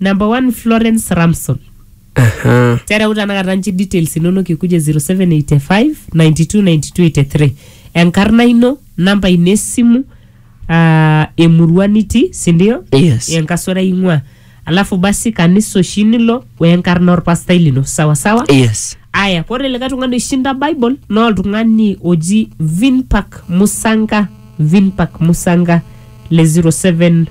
Number one, Florence Ramson. Aha. tereu tanakata nchi details inonok ikuje 0785 929283 enkarna ino namba ino esimu uh, emurua nitii sindio Yes. enkasura ing'ua alafu basi kanisa oshi nilo wenkarna orpastai lino sawasawa Yes. aya kore likae tung'ani oishinda bible naa oltung'ani oji vinpak musanga vinpak musanga le 07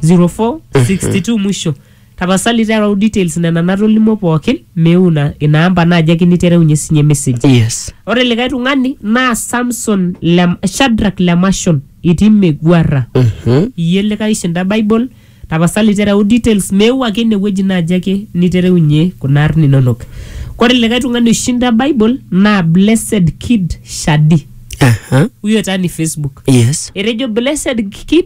0462 mwisho tapasali tereu details nena natolimuo pookin meu ina ina amba naaji ake nitereunyie sinye message yes ore likae tung'ani naa samson lem, shadrak lemashon itii meguarra Mhm. iyie likae ishinda bible tapasali tereu details meu ake inewueji naaji ake nitereunyie kuna arn inonok kore likae tung'ani oishinda bible naa blessed kid shadi Aha. huyo taa ni facebook yes etejo blessed kid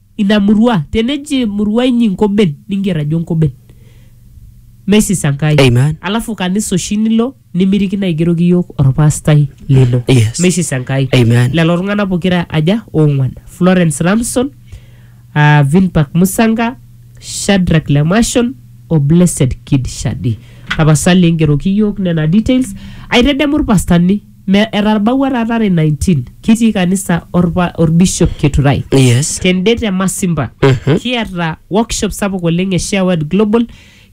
ina murua teneji murua inyi nkoben ninger ajo nkoben mesis enkai Amen. alafu kanisa oshi nilo nimirikino aigeroki yiok orpastai lino Yes. mesis enkai Amen. lelo tung'anak pokira aja ong'uan florence ramson uh, vinpak musanga shadrak lemashon o blessed kid shadi tapasali engeroki yiok nena details aitedemu irpastani Me etarbaua taata are 19 kitii kanisa orpa orbishop Keturai. Yes. Tende te Masimba Mhm. kiata workshop sapuk oleng e Share Word Global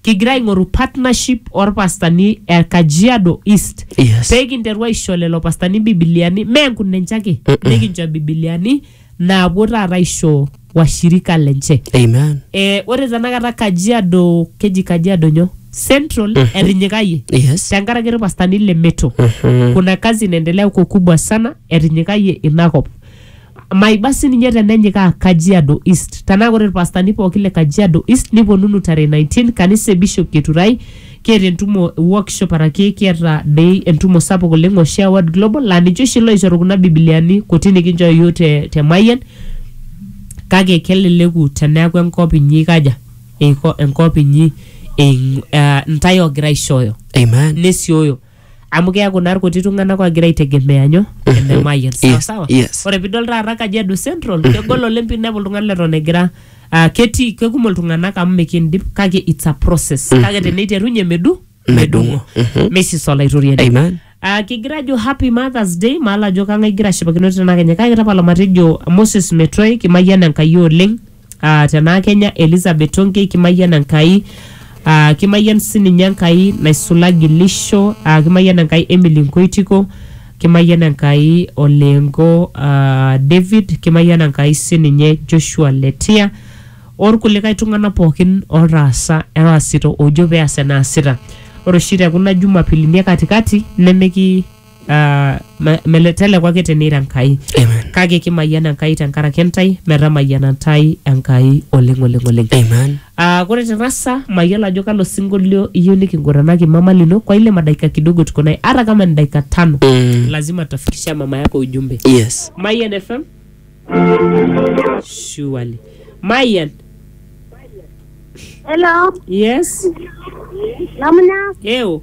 kigira aing'oru partnership orpastani e Kajiado East Yes. pee kinteru aisho lelo pastani bibiliani mee nkunenche ake nikincho bibiliani naapuo taata aisho washirika lenche Amen. eh, ore tenakata kajiado keji kajiado nyo central etinyikayie Yes. tenkaraki irpastani le meto Mhm. kuna kazi inaendelea huko kubwa sana etinyikayie inakop maiba sininye tenenyikaa kajiado east tenaa ore irpastani pooki le kajiado east niponunu tarehe 19 kanisa e bishop keturai Kiata entumo e workshop araki kiata dei entumo sapuk oleng oshi e Word Global laa ninche oshi loishoru kuna bibiliani kuti nikinchoo iyiok te, te Mayian kake keleleku teneaku enkop inyi eikaja eiko enkop inyi eing, uh, intae ogira aishooyo Amen. nesioyo amu keaku naa irkuti tung'anak ogira aitegemea nyo ene mayian sawa Yes, sawa yes. ore pidol taata kajiado central kegol oleng pinepu oltung'ani leton egira ah, ketii kekumok iltung'anak amu mikindip kake it's a process kake teneiterunye medu Medung'o. Mhm. mesis olaitoriani Amen. Ah, kigira ajo happy mothers day maala ajo kang'ae igira ashipakino tenakenya kake tapala matejo moses metoi kimayian enkai oleng Ah, tenaa kenya Elizabeth Tonkei kimayian Enkai ah, kimayian sininye Enkai naisula Gilisho ah, kimayian Enkai Emily Nkoitiko kimayian Enkai Olengo ah, David kimayian Enkai sininye Joshua Letia orkulikae tung'anak pookin otaasa oasita ojo peas enaasita ore oshi tekuna jumapilini e katikati nemiki ah, me- mele- teleku ake tenira enkai Amen. kake kimayian enkai tenkaraki intae metamayiana intae enkai oleng oleng oleng Amen. Ah, kore te rasa mayiolo ajo kalo sinkolio iyieu nikinguranaki mama lino kwa ile madaika kidogo tuko naye hata kama ni dakika tano Mm. lazima tafikisha mama yako ujumbe Yes. Mayan FM surely Mayan Hello, yes namna eo